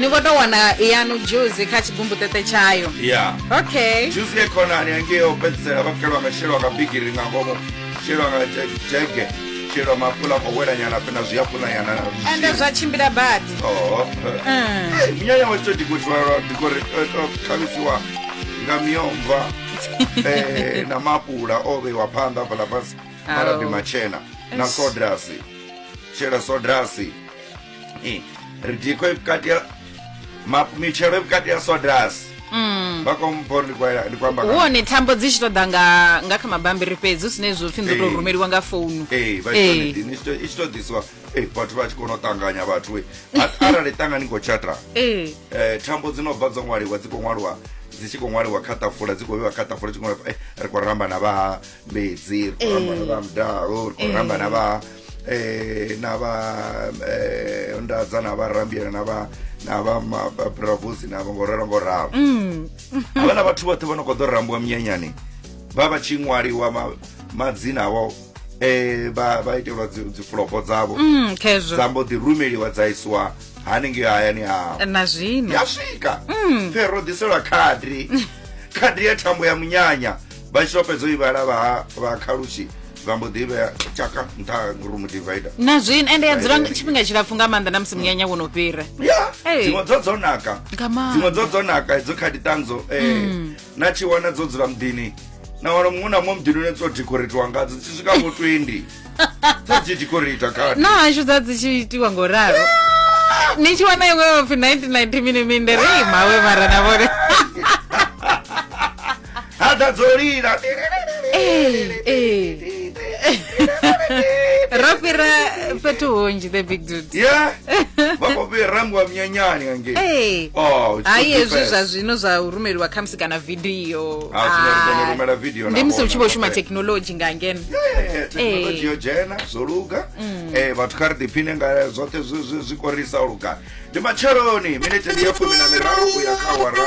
ni khou tou wana yanu dzhuzi kha tshigumbuṱeṱe tshayo ya okay dzhuzi ye khonani angei o fhedzisela vha kelwa nga shelwa nga bigiri nga ngomu shelwa nga je- jege shelwa mapula nga welanyana fhe na zwiapulanyana na zwi- ende zwa tshimbila badi Oho. Mm. Eh, minyanya wa tsho dikotwalwa dikore khavisiwa nga miomva eh, na mapula o vheiwa phanḓa fhala fhasi malabi Au. matshena na Eish. sodrasi shela sodrasi Eh, ridiko iri vukati ya ma- michero iri vukati ya sodasi Mm. vakomupo ndikwamba uone tambo dzi tshi tou ḓa nga nga kha mabambiri fhedzi hu si ne zwo pfhi ndo tou Eh. rumeliwa nga founu Eh. i tshi to ḓisiwa eh, vhathu vha tshi kona u ṱanganya vhathu eh. A- arali ṱanga ni khou tshatra Eh. eh, thambo dzi no bva dzo ṅwaliwa dzi khou ṅwaliwa dzi tshi khou ṅwaliwa kha ṱafula dzi khou vhewa kha ṱafula dzi khou ṅwaliwa, eh, ri khou ramba na vha mbedzi ri khou ramba na vha mudalo ri khou ramba na vha eh, na vha eh, ndadza na vharambiyela na vha na vha ma- vha bravosi na vha ngoralo ngoralo havhala vhathu vhoṱhe vho no khou ḓo rambiwa minyanyani vha vha tshi ṅwaliwa ma- madzina avho eh, vha vha itelwa dzi- dzifulofho dzavho Mm, khezwo dza mbo ḓi rumeliwa dza isiwa hanengei hayani hao na zwino ya swika fe ro ḓiselwa khadri khadri ya thambo ya munyanya vha tshi to fhedza u ivhala vha vha khalushi vha mbo ḓi vhea tshaka nṱha room divider na zwino ende ya dzula tshifhinga tshilapfu nga maanḓa na musi munyanya wo no fhira ya dziṅwe dzo dzo naka dziṅwe dzo dzo naka dzo kha diṱanzo um eh, mm. na tshi wana dzo dzula muḓini na wana muṅwe na muṅwe muḓini une dzo decoratiwa ngadzo dzi swika vho 20 dza dzi decorata kha na hashu dza dzi tshi itiwa ngo ralo ni tshi wana iṅwe vapfi 1990 mini minde rei mawe mara na vhone ha ḓa dzo lila ro fhira fhethu hunzhi the big dude yeah vha khou vhe rambiwa munyanyani ngangei oh, hai hezwi zwa zwino zwa u rumeliwa khamusi kana vidio ah, ah, ndi musi u tshi vho shuma thekhinolodzhi nga ngeno thekhinolodzhi yo dzhena zwo luga mm. eh, vhathu kha ri ḓiphine nga zwoṱhe zwi korisa luga ndi matsheloni minete ndi ya fumi na miraru u ya kha wara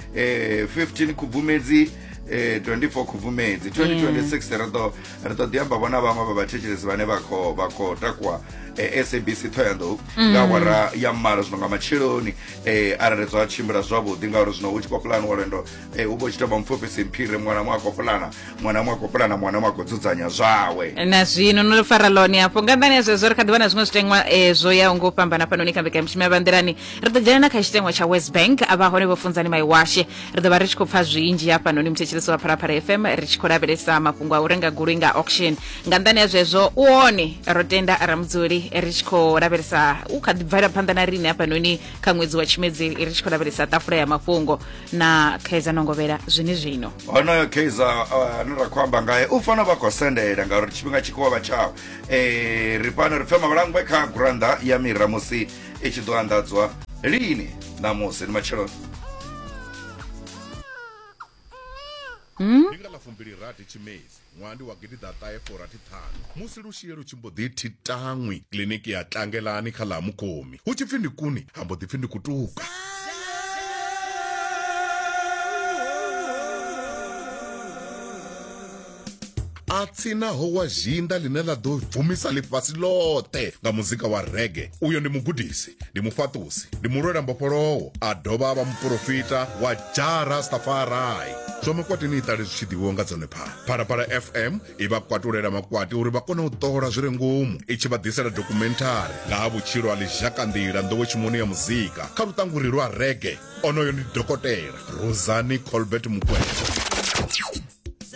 eh, 15 khubvumedzi eh, 24 khubvumedzi 2026 ri ḓo ri ḓo ḓi amba vho na vhaṅwe vha vhathetshelesi vhane vha khou vha khou takuwa eh, sabc thoyandou nga awara ya malo zwino nga matsheloni eh, arali zwa tshimbila zwavhuḓi ngauri zwino hu tshi khou pulaniwa lwendo eh, u vha u tshi tou vha mupfufhisi mphire muṅwe na muṅwe a khou pulana mwana mwa kopula na mwana mwa kudzudzanya zwawe na zwino no fara lone hafho nga nḓani ya zwezwo ri kha ḓi vha na zwiṅwe zwiteṅwa eh, zwo yaho ngo fhambana fhanoni kha mbekanyamushumo ya vhanḓilani ri ḓo dzhena na kha tshiteṅwa tsha west bank a vha hone vho funzani maiwashe ri ḓo vha ri tshi khou pfa zwinzhi hafhanoni muthetshelesi wa phalaphala fm ri tshi khou lavhelesa mafhungo a u renga goloi nga auction nga nḓani ya zwezwo u one ro tenda ramudzuli ri tshi khou lavhelesa u kha ḓi bvela phanḓa na riṋe hafhanoni kha ṅwedzi wa tshimedzi ri tshi khou lavhelesa tafula ya mafhungo na kaizer nongovhela zwini zwino honoyo kaizer uh, ane ra khou amba ngae u fanela vha khou sendela ngauri tshifhinga tshi khou vha tshawo eh, ri fhano ri pfe mavhalangwe kha gurannda ya mira musi i tshi ḓo anḓadzwa lini ṋamusi ni matsheloni hmm? Ṅwaha ndi wa gidiḓaṱahe furathi ṱhanu, musi lushie lu tshi mbo ḓi thi taṅwi kiḽiniki ya Tlangelani kha ḽa Ha Mukomi, hu tshi pfi ndi kuni ha mbo ḓi pfi ndi kutuka. a tsinaho wa zhinda ḽine ḽa ḓo bvumisa ḽifhasi ḽoṱhe nga muzika wa rege uyo ndi mugudisi ndi mufhaṱusi ndi mulwela mbofholowo a dovha a vha muporofita wa ja rastafarai zwa makwatini iṱali zwi tshi ḓivhiwa nga dzone phalaphala fm i vha kwatulela makwati uri vha kone u ṱola zwi re ngomu i tshi vha ḓisela dokhumenthari nga ha vhutshilo ha lizhakanḓila nḓowetshimoni ya muzika kha luṱanguri lwa rege onoyo ndi dokotela rosani colbert mukwevho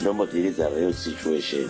no mbo ḓi lidza real situation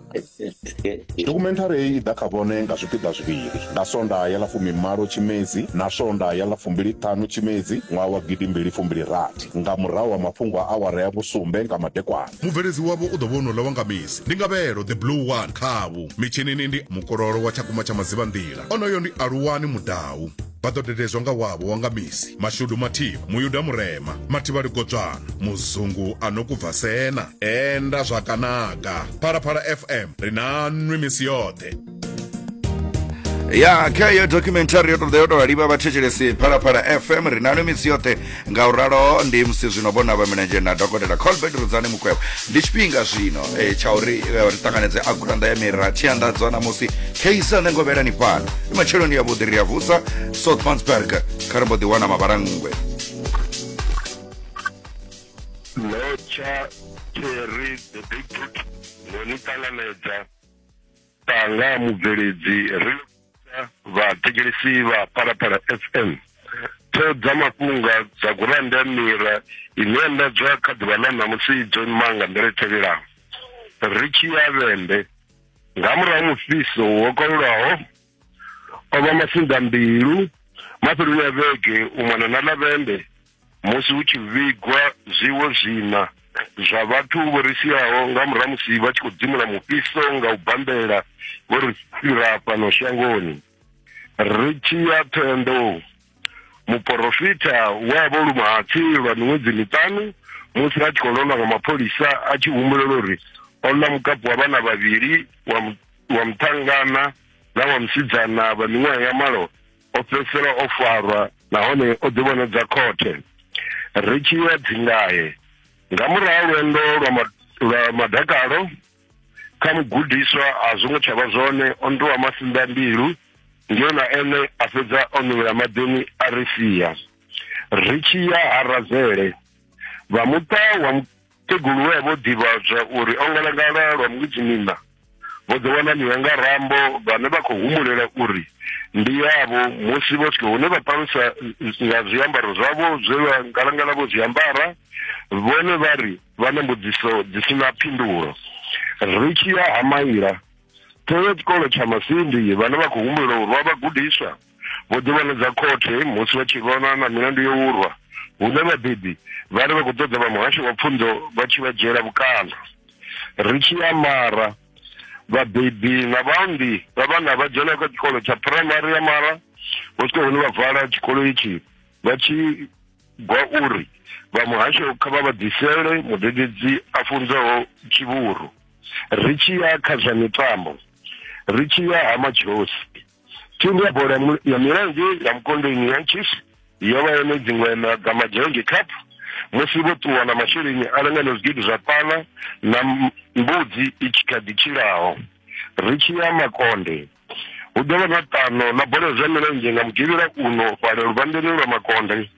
Dokhumenthari heyi i ḓa kha vhone nga zwipiḓa zwivhili, nga Sondaha ya ḽa fumimalo Tshimedzi na Sondaha ya ḽa fumbili-ṱhanu Tshimedzi ṅwaha wa gidi mbili fumbili rathi, nga murahu ha mafhungo a awara ya vhusumbe nga madekwana. Mubveledzi wavho u ḓo vha o no ḽa wanga misi, ndi Ngavhelo the Blue One khavhu. Mitshinini ndi Mukololo wa Tshakumba tsha Madzivhanḓila, onoyo ndi Aluwani Mudau. vha ḓo dededzwa nga wavho wa nga misi mashudu mathivha muyuda murema mathivha ligodzwana muzungu a no kubva sena enda zwakanaga phalaphala fm ri na nwi misi yoṱhe ya kha iyo documentary yo tou yo tou livha vhathetshelesi phalaphala fm ri na nwi misi yoṱhe Ngauralo ndi musi zwino vho Navha Milenzhe na Dokotela Colbert Rudzani Mukwevho ndi tshifhinga zwino e, tsha uri e, ri ṱanganedze a gurannḓa ya mira tshi anḓadzwa ṋamusi kheisa nṋe ngovhela ni fhano ndi matsheloni ya vhuḓi ri ya vusa south mansberg kha ri mbo ḓi wana mavhalangwe Lotsha Terry the Big Boot no ni ṱanganedza Tanga mubveledzi ri vhathetshelesi vha Phalaphala FM ṱhoho dza mafhunga dza gurannda ya mira ine ya ndadzwa kha ḓuvha ḽa ṋamusi dzo ima nga nḓila i tevhelaho ri tshi ya vhende nga murahu mufhiso wo kalulaho o vha masinḓa mbilu mafheloni a vhege u mona na lavende musi hu tshi vhigwa zwiwo zwina zwa vhathu vho ri siaho nga murahu musi vha tshi khou dzimula mufhiso nga u bambela vho ri fhira fhano shangoni ri tshi ya thendo muporofita we a vho luma hatsi lwa miṅwedzi miṱanu musi a tshi khou londwa nga mapholisa a tshi humbulela uri o ḽa mukapu wa vhana vhavhili wa muṱhangana na wa musidzana vha miṅwaha ya malo o fhedzisela o farwa nahone o ḓivhonadza khothe ri tshi ya dzingahe nga murahu lwendo lwa lwa madakalo kha mugudiswa a zwo ngo tsha vha zwone o nduwa masinḓa mbilu ndi yona ene a fhedza o nuvhela maḓini a ri sia ri tshi ya ha razele vha muṱa wa Kegulu we a vho ḓivhadzwa uri o ngalangala lwa mudzimina vho ḓo wana miwa nga rambo vhane vha khou humulela uri ndi yavho musi vho swika hune vha palusa nga zwiambaro zwavho zwe vha ngalangala vho zwiambara vhone vha ri vha na mbudziso dzi si na phindulo ri tshi ya ha maila Ṱhoho ya tshikolo tsha Masindi vhane vha khou humbula uri vha vhagudiswa vho ḓivhanedza khothe musi vha tshi lwana na milandu yo urwa hune vhabebi vha ri vha khou ṱoḓa vha muhasho wa pfunzo vha tshi vha dzhiela vhukando ri tshi amara vhabebi na vhaunḓi vha vhana vha dzhena kha tshikolo tsha phuraimari ya mara vho swika hune vha vala tshikolo itshi vha tshi gwa uri vha muhasho kha vha vha ḓisele mudededzi a funzaho tshivhuru ri tshi ya kha zwa mitambo ri tshi ya ha matshosi Thimu ya bola ya milenzhe ya Mukondeni ya Chiefs yo vha yone dziṅwe maga Majengi Cup musi vho ṱuwa na masheleni a lingana zwigidi zwa pala na mbudzi i tshi kha ḓi tshilaho ri tshi ya makonde hu ḓo vha na ṱano na bola zwa milenzhe nga mugivhela uno fhala luvhandeni lwa makonde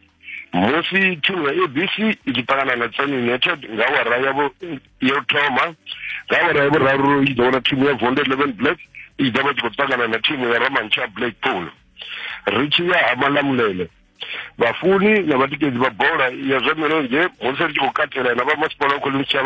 musi thimu ya abc i tshi ṱangana na tsani united nga awara yavho yo thoma nga awara ya vhuraru i ḓo wana thimu ya vonde eleven black i ḓo vha tshi khou ṱangana na thimu ya ramantsha blackpool ri tshi ya ha malamulele vhafuni na vhatikedzi vha bola ya zwa milenzhe musi ri tshi khou katela na vha masipala wa khoḽinishavha